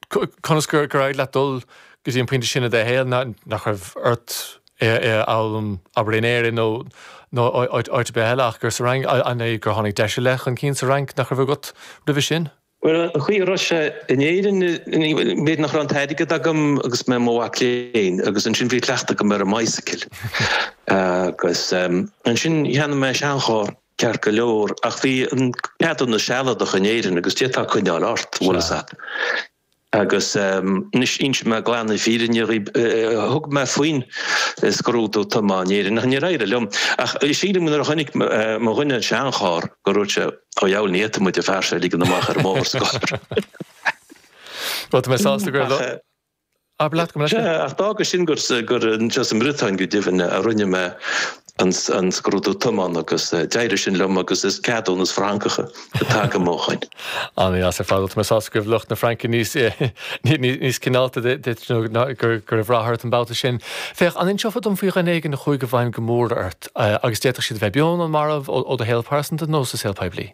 Conas gur éirigh leat dul go dtí an pointe sin i do shaol? Nach raibh ort é a fhoghlaim, abair, in Éirinn nó áit ar bith eile ach gur sa Fhrainc? An é gur tháinig deis ar leith chun cinn sa Fhrainc nach raibh agat roimhe sin? Bhuel, an chaoi a raibh sé in Éirinn, b'fhéidir nach raibh an t-airgead agam agus mé i mo mhac léinn agus ansin bhí cleachtadh agam ar an mbicycle. Agus ansin cheannaigh mé seancharr. Ceart go leor, ach bhí ceadúnas sealadach in Éirinn agus d'fhéadfá coinneáil ort, an bhfuil a fhios agat. Agus anois inseoidh mé glan na fírinne dhaoibh, thug mé faoin scrúdú tiomána in Éirinn ach níor éirigh liom. Ach sílim go nuair a chonaic mo dhuine an seancharr gur dhúirt sé ó a dhiabhail ní fhéadfaidh muid an fear seo a ligean amach ar an mbóthar sa gcathair. Bhuel, tá mé sásta gur. Abair leat go mbeidh sé. Sea, ach d'fhága sin gur anseo sa mBriotáin, go deimhin, a rinne mé an scrúdú tiomána agus d'éirigh sin liom agus is ceadúnas Francach atá agam ó shoin. An-deas ar fad. Bhuel, tá mé sásta go raibh lucht na Fraince níos cineálta duit nó go raibh rath ort an babhta sin. Féach, an inseofá dom faoi dhuine éigin a chuaigh i bhfeidhm go mór ort agus d'fhéadfadh siad a bheith beo nó marbh ó do shaol pearsanta nó sa saol poiblí?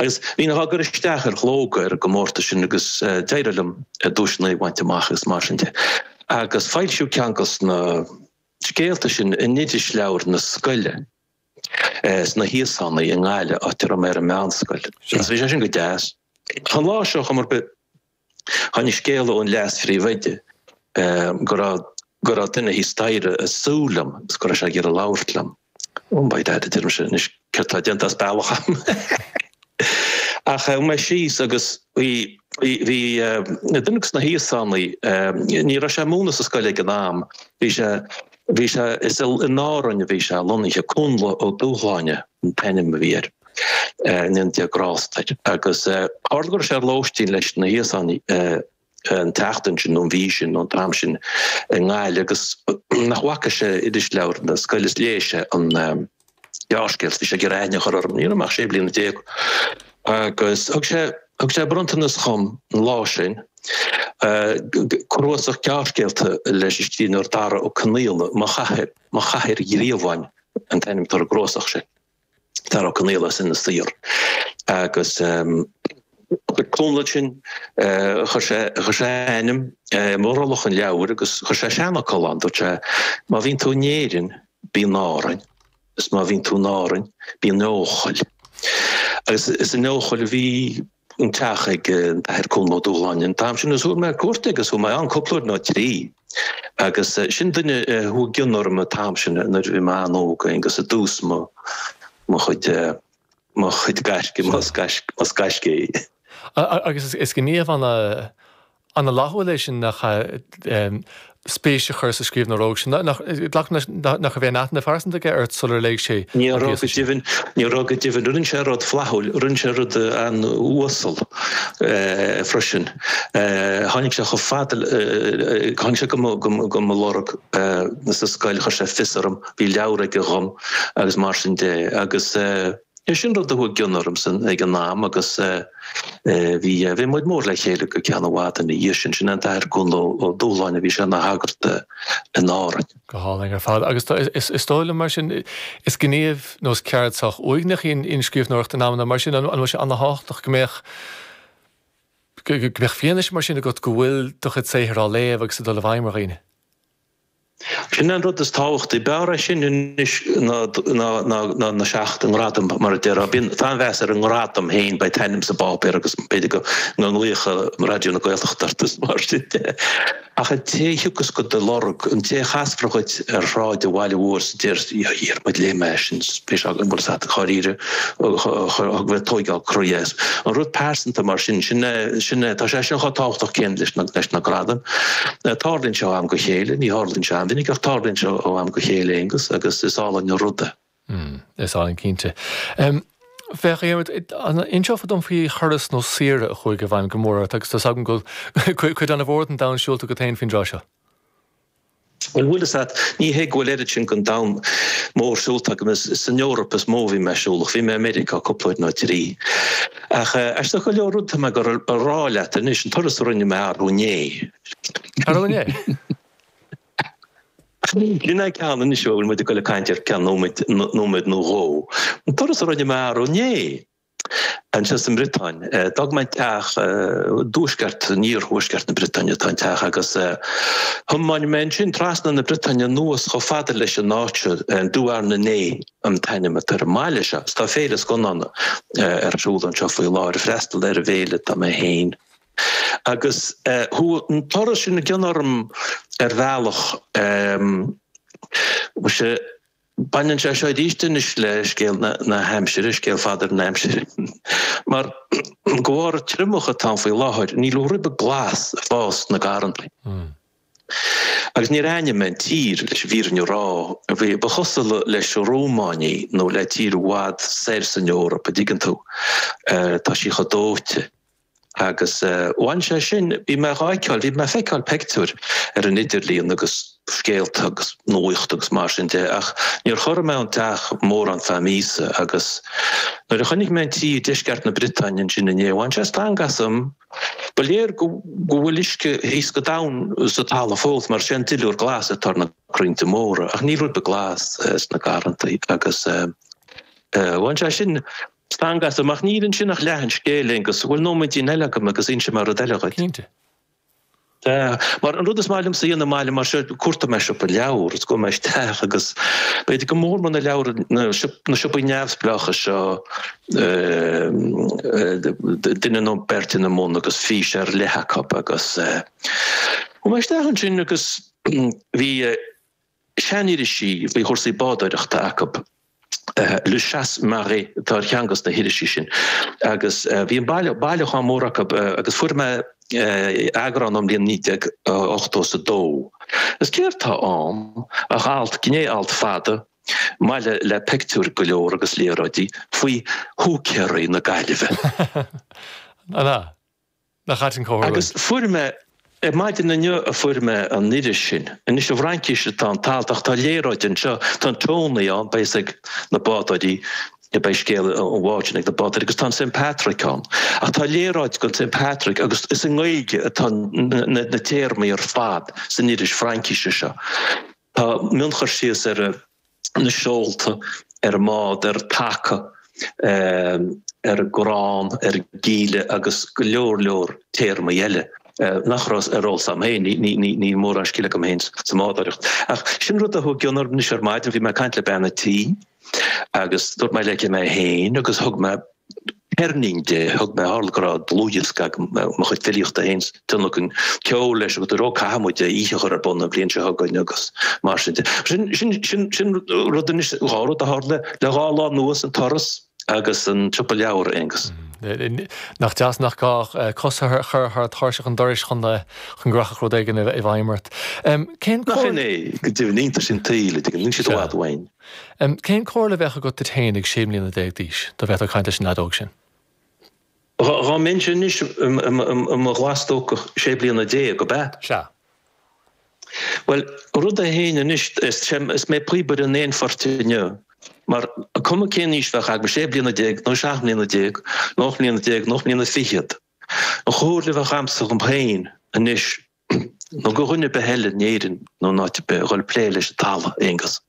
Agus bhínn á gcur isteach ar Shlógadh ar an gcomórtas sin agus d'éirigh liom duaiseanna a bhaint amach agus mar sin de. Agus foilsíodh ceann de sna scéalta sin in irisleabhair na scoile, sna hÍosánaigh i nGaillimh, áit a raibh mé ar an meánscoil. Agus bhí sé sin go deas. An lá seo ar chuma ar bith, Tháinig scéala ón leas-phríomhoide go raibh go raibh duine thíos staighre ag súil liom agus go raibh sé ag iarraidh labhairt liom. Oh by dad, a deirimse, anois céard atá déanta as bealach agam. Ach chuaigh mé síos agus bhí bhí duine de sna hÍosánaigh ní raibh sé ag múineadh sa scoil ag an am, bhí sé bhí sé is in Árainn a bhí sé lonnaithe Connla Ó Dúshláine. an t-ainm a bhí air, go ndéana Dia grásta air, agus tharla go raibh sé ar lóistín leis na hÍosánaigh an tseachtain sin, nó an mhí sin, nó an t-am sin i nGaillimh agus nach bhfaca sé irisleabhar na scoile is léigh sé an gearrscéal, bhí sé ag iarraidh aithne a chur orm, ní raibh mé ach sé bliana déag agus thug sé thug sé bronntanas dhom an lá sin, cnuasach gearrscéalta leis an scríbhneoir Dara Ó Conaola, Mo Chathair Mo Chathair Ghríobháin. an t-ainm atá ar an gcnuasach sin Dara Ó Conaola as Inis Oírr agus chuir Connla sin chuir sé chuir sé a ainm i mbrollach an leabhair agus chuir sé seanfhocal ann dúirt sé má bhíonn tú in Éirinn bí in Árainn is má bhíonn tú in Árainn bí in Eochaill agus is in Eochaill a bhí an teach ag an tAthair Connla Ó Dúláine an t-am sin agus chuaigh mé ar cuairt aige agus chuaigh mé ann cúpla uair nó trí agus sin duine a chuaigh i gcion orm an t-am sin nuair a bhí mé an-óg agus i dtús mo mo chuid mo chuid gaisce, más gaisce é. Agus is gníomh an An-fhlaithiúil é sin nach ea, spéis a chur sa scríbhneoir óg? Is glacaim nach raibh aon aithne phearsanta aige ort sular léigh sé an píosa sin? Ní raibh go deimhin. Rinne sé rud flaithiúil. Rinne sé rud an-uasal freisin. Tháinig sé chomh fada le, tháinig sé do mo lorg sa scoil, chuir sé fios orm, bhí leabhar aige dhom agus mar sin de. Agus. Sin rud a chuaigh i gcion ormsa ag an am agus bhí bhí muid mór le chéile go ceann i bhfad ina dhiaidh sin. Sin an tAthair Connla Ó Dúláine a bhí sé ina shagart in Árainn. Go hálainn ar fad agus tá is dóigh liom mar sin is gníomh nó is ceird sách uaigneach í an scríbhneoireacht in amanna mar sin. An bhfuil sé an-tábhachtach go mbeadh go mbeadh fianaise mar sin agat go bhfuil do chuid saothair á léamh agus ag dul i bhfeidhm ar dhaoine? Sin an rud is tábhachtaí. B'fhearr é sin anois ná na seacht ngradam, mar a déarfá. Bíonn an-mheas ar an ngradam féin, beidh t'ainm sa bpáipéar agus b'fhéidir go nglaofadh Raidió na Gaeltachta ort is mar sin de. Ach an té a thiocfas do do lorg, an té a chasfar dhuit ar shráid an bhaile mhóir is a déarfas, 'Dhiarmuid, léigh mé sin, bhí sé agam, an bhfuil fhios a't, dháiríre? chun bheith tógáil croí. An rud pearsanta mar sin, sin é, sin é, tá sé sin chomh tábhachtach céanna leis na, leis na gradaim. Tarlaíonn sé ó am go chéile, ní tharlaíonn sé an-mhinic, ach tarlaíonn sé ó am go chéile, Aonghus, agus is álainn an rud é. Is álainn cinnte. Féach, Dhiarmuid, an inseofá dom faoi thuras nó saoire a chuaigh i bhfeidhm go mór ort, agus tá's agam go bhfuil cuid, cuid ana-mhór den domhan siúlta agat féin faoin dtráth seo? An bhfuil fhios agat, ní hé go bhfuil oiread sin den domhan mór siúlta agam, is san Eoraip is mó a bhí mé siúlach, bhí mé i Meiriceá cúpla uair nó trí. Ach aisteach go leor rud atá mé ag dul a rá leat anois, an turas a rinne mé arú inné. Arú inné? Sin é an ceann anois a bhfuil muid ag dul ag caint air ceann nóiméad nó dhó. An turas a rinne mé arú inné. Anseo sa mBriotáin, d'fhág mé an teach i dtuaisceart, in iarthuaisceart na Briotaine atá an teach agus thiomáin mé ansin trasna na Briotaine anuas chomh fada leis an áit seo, Douarnenez an t-ainm atá ar an mbaile seo. Tá féile scannána ar siúl anseo faoi láthair, freastal ar an bhféile atá mé féin agus chuaigh an turas sin i gcion orm ar bhealach. Baineann sé seo arís anois le scéal na haimsire, scéal Pheadair na haimsire. Mar, de bharr an triomach atá ann faoi láthair, níl aon ribe glas ag fás sna garrantaí. Agus níor aithin mé an tír leis an bhfírinne a rá, a bhí ba chosúil leis an Rómáin í nó le tír i bhfad soir san Eoraip, an dtuigeann tú, tá sí chomh dóite. Agus bhain sé sin, bhí mé dhá fheiceáil, bhí mé ag feiceáil pictiúir ar an idirlíon agus scéalta agus nuacht agus mar sin de ach níor chorraigh mé ón teach mórán ar feadh míosa agus nuair a chonaic mé an tír i ndeisceart na Briotáine ansin inné bhain sé stangadh asam. Ba léir go bhfuil uisce thíos go domhain sa talamh fós mar is é an duilliúr glas atá ar na crainnte móra ach níl ribe glas sna garrantaí agus bhain sé sin Stangadh asam, ach níl ansin ach leath an scéil, Aonghus. An bhfuil nóiméidín eile agam agus inseoidh mé rud eile dhuit. Cinnte. Mar an rud is maith liomsa a dhéanamh i mbaile mar seo, cuartóidh mé siopa leabhar is gabhfaidh mé isteach agus b'fhéidir go mór mór na leabhar na siopaí neamhspleácha seo duine nó beirt ina mbun agus fís ar leith acu agus chuaigh mé isteach ansin agus bhí Seanirisí faoi chúrsaí bádóireachta acu, Le Chasse-Marée atá ar cheann de na hirisí sin, agus bhí an baile, bailiúchán mór acu, agus fuair mé eagrán ón mbliain 1982. Is céard atá ann ach alt, gné-alt fada, maille le pictiúir go leor agus léaráidí faoi húicéaraí na Gaillimhe. An ea? Nach ait an comhtharlú é? Agus fuair mé, ar maidin inniu a fuair mé an iris sin. Anois i bhFraincís atá an t-alt ach tá léaráid anseo, tá an Tónaí ann, beidh fhios ag na bádóirí, beidh scéal an bháid sin ag na bádóirí agus tá an St Patrick ann. Ach tá léaráid den St Patrick agus is i nGaeilge atá na téarmaí ar fad san iris Fraincíse seo. Tá mionchur síos ar na seolta ar an mbád, ar an taca, ar an gcrann, ar an gcíle agus go leor leor téarmaí eile nach raibh ar eolas agam féin, níl mórán scil agam féin sa mbádoireacht. Ach sin rud a chuaigh i gcion orm anois ar maidin, bhí mé ag caint le bean a' tí agus dúirt mé léi cé mé féin agus thug mé Ceirnín di, thug mé, tharla go raibh dlúthdhiosca agam de mo chuid filíochta féin, tionlacan ceoil leis agus dúradh caithfidh muid oíche a chur ar bun an bhliain seo chugainn agus mar sin de. Sin, sin, sin, sin rud anois, dhá rud a tharla le dhá lá anuas, an turas agus an siopa leabhar, Aonghus. Nach deas nach gá cos a chur thar thairseach an dorais chun go rachfadh rud éigin i bhfeidhm ort. Cén cóir? Nach sin é, go deimhin, iontais an tsaoil, an dtuigeann tú, níl siad i bhfad uainn. Cén comhairle a bheadh agat duit féin ag sé mbliana déag d'aois, dá bhféadfá caint leis an lead óg sin? Dhá mbeinnse anois i mo ghlas-stócach sé bliana déag, ab ea? Sea. Bhuel, rud é fhéin anois, is mé píobaire an aon phoirt inniu, mar cuma cén aois bheadh agam, sé bliana déag, nó seacht mbliana déag, nó ocht mbliana déag, nó ocht mbliana fichead, an chomhairle a bheadh agamsa dhom fhéin anois, nó go dhuine ar bith eile in Éirinn nó in áit ar bith a ghoill plé leis an talamh, Aonghus.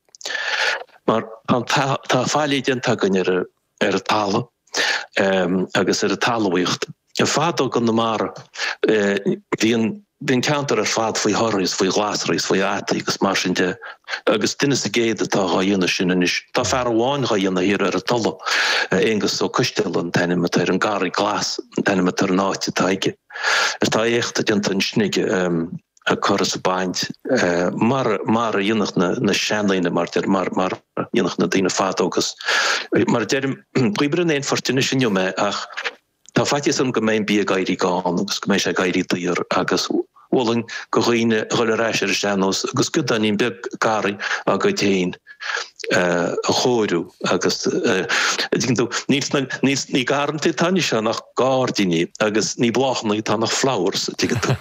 Mar tá faillí déanta againn ar an talamh agus ar an talmhaíocht. Ar fadó i gConamara bhí an ceantar ar fad faoi thorthaí is faoi ghlasraí is faoi fhataí agus mar sin de agus duine sa gcéad atá dhá dhéanamh sin anois. Tá fear amháin dhá dhéanamh thiar ar an Tulaigh, Aonghus Ó Coisteala an t-ainm atá air, an Garraí Glas an t-ainm atá ar an áit atá aige. Is tá éacht déanta ansin aige ag cur is ag baint mar mar a dhéanfadh na na seandaoine mar deir mar mar a dhéanfadh na daoine fadó agus mar a deirim píobaire an aon phoirt anois inniu mé ach tá faitíos orm go mbeidh an bia ag éirí gann agus go mbeidh sé ag éirí daor agus b'fholáir go dhaoine dhul ar ais ar a sean-nós agus giodáinín beag garraí acu féin. a chóiriú agus ní garrantaí atá anois ann ach gairdíní agus ní bláthanna atá ach flowers, an dtuigeann tú.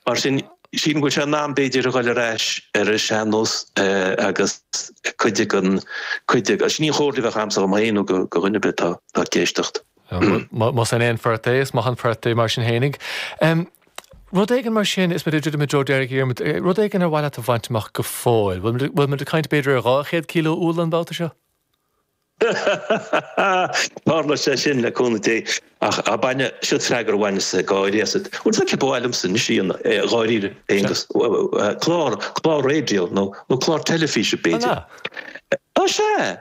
Mar sin, sin bhfuil sé in am b'fhéidir a dhul ar ais ar an sean-nós agus cuid den, cuid, sin í an chomhairle a bheadh agamsa dhom féin nó do dhuine ar bith atá ag éisteacht. Más é an aon phort é, is maith an port é mar sin fhéinig. Rud éigin mar sin is muid ag druidim i dtreo deiridh, a Dhiarmaid. Rud éigin ar mhaith leat a bhaint amach go fóill? Bhfuil muid ag caint b'fhéidir ar dhá chéad cileo úll an babhta seo? Tarlóidh sé sin, le cúnamh Dé. Ach a bainfidh, siod freagra a bhaineas gáirí asat. Bhuel, ba mhaith liomsa anois, dháiríre, Aonghus. Clár, clár raidió nó clár teilifíse, b'fhéidir. An ea? Ó sea!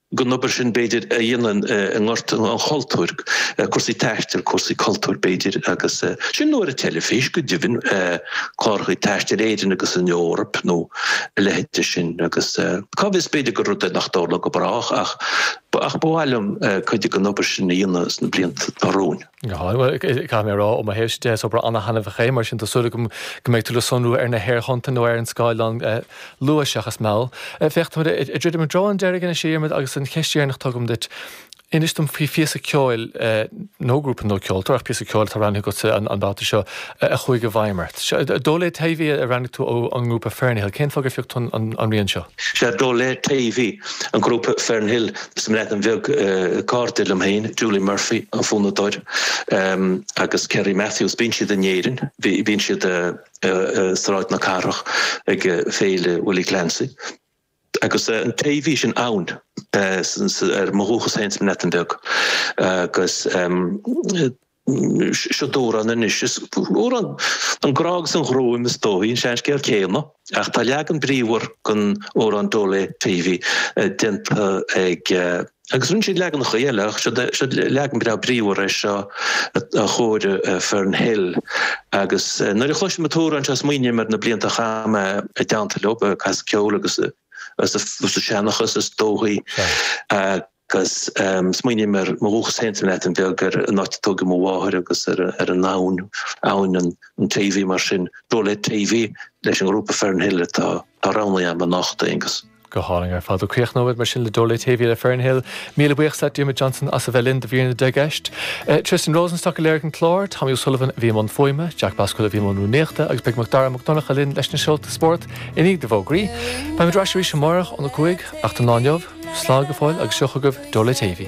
gon obair sin b'fhéidir a dhéanamh i ngort an chultúir, cúrsaí taistil, cúrsaí cultúir b'fhéidir agus sin, nó ar an teilifís go deimhin, cláracha taistil in Éirinn agus san Eoraip nó a leithéid de sin agus cá bhfios b'fhéidir gur rud é nach dtarlóidh go brách ach ach ba mhaith liom cuid den obair sin a dhéanamh sna blianta atá romhainn. Caithfidh mé a rá, ó mo thaobhsa de, is obair an-taitneamhach é, mar sin tá súil agam go mbeidh tú le sonrú ar na haerthonnta nó ar an scáileán luath seachas mall. Féach, táimid ag druidim i dtreo an deiridh anois, a Dhiarmaid, agus an cheist dheireanach tugaim duit, inis dom faoi phíosa ceoil, nó grúpa nó ceoltóir, ach píosa ceoil atá roghnaithe agatsa an babhta seo, a chuaigh i bhfeidhm ort. Dole Teifi a roghnaigh tú ó an ngrúpa Fernhill. Cén fáth gur phioc tú an rian seo? Seo Dole Teifi, an grúpa Fernhill as an mBreatain Bheag, cairde liom féin, Julie Murphy, an fonnadóir, agus Ceri Matthews. Bíonn siad in Éirinn, bíonn siad i Sráid na Cathrach ag Féile Willie Clancy. Agus an taobh sin ann ar mo dhúchas féin sa mBreatain Bheag. Agus Seo amhrán anois, amhrán an grá agus an ghruaim is dóichí an seanscéal céanna, ach tá leagan bríomhar den amhrán Dole Teifi déanta ag agus rinne siad leaganacha eile ach seo leagan breá bríomhar é seo a chóirigh Fernhill agus nuair a chloisim an t-amhrán seo smaoiním ar na blianta a chaith mé i dteannta leo, ag casadh ceoil agus ag seanchas is dóichí. Agus smaoiním ar mo dhúchas féin sa mBreatain Bheag, ar an áit a tóigeadh mo mháthair agus ar ar an abhainn, abhainn an an Teifi, mar sin, Dole Teifi, leis an ngrúpa Fernhill atá atá roghnaithe agam anocht, Aonghus. Go hálainn ar fad. Ó críochnóimid mar sin le Dole Teifi, le Fernhill, míle buíochas leat, Diarmuid Johnson, as a bheith linn do mhír na ndeich gceist. Eh, Tristan Rosenstock a léirigh an clár, Tommy O'Sullivan a bhí i mbun fuaime, Jack Bascuel a bhí i mbun rúnaíochta agus beidh Mac Dara Mac Donncha linn leis na scéalta spóirt I ndiaidh na bhfógraí, beimid ar ais arís amárach ón a cúig, ach don lá inniu, slán go fóill agus seo chugaibh Dole Teifi.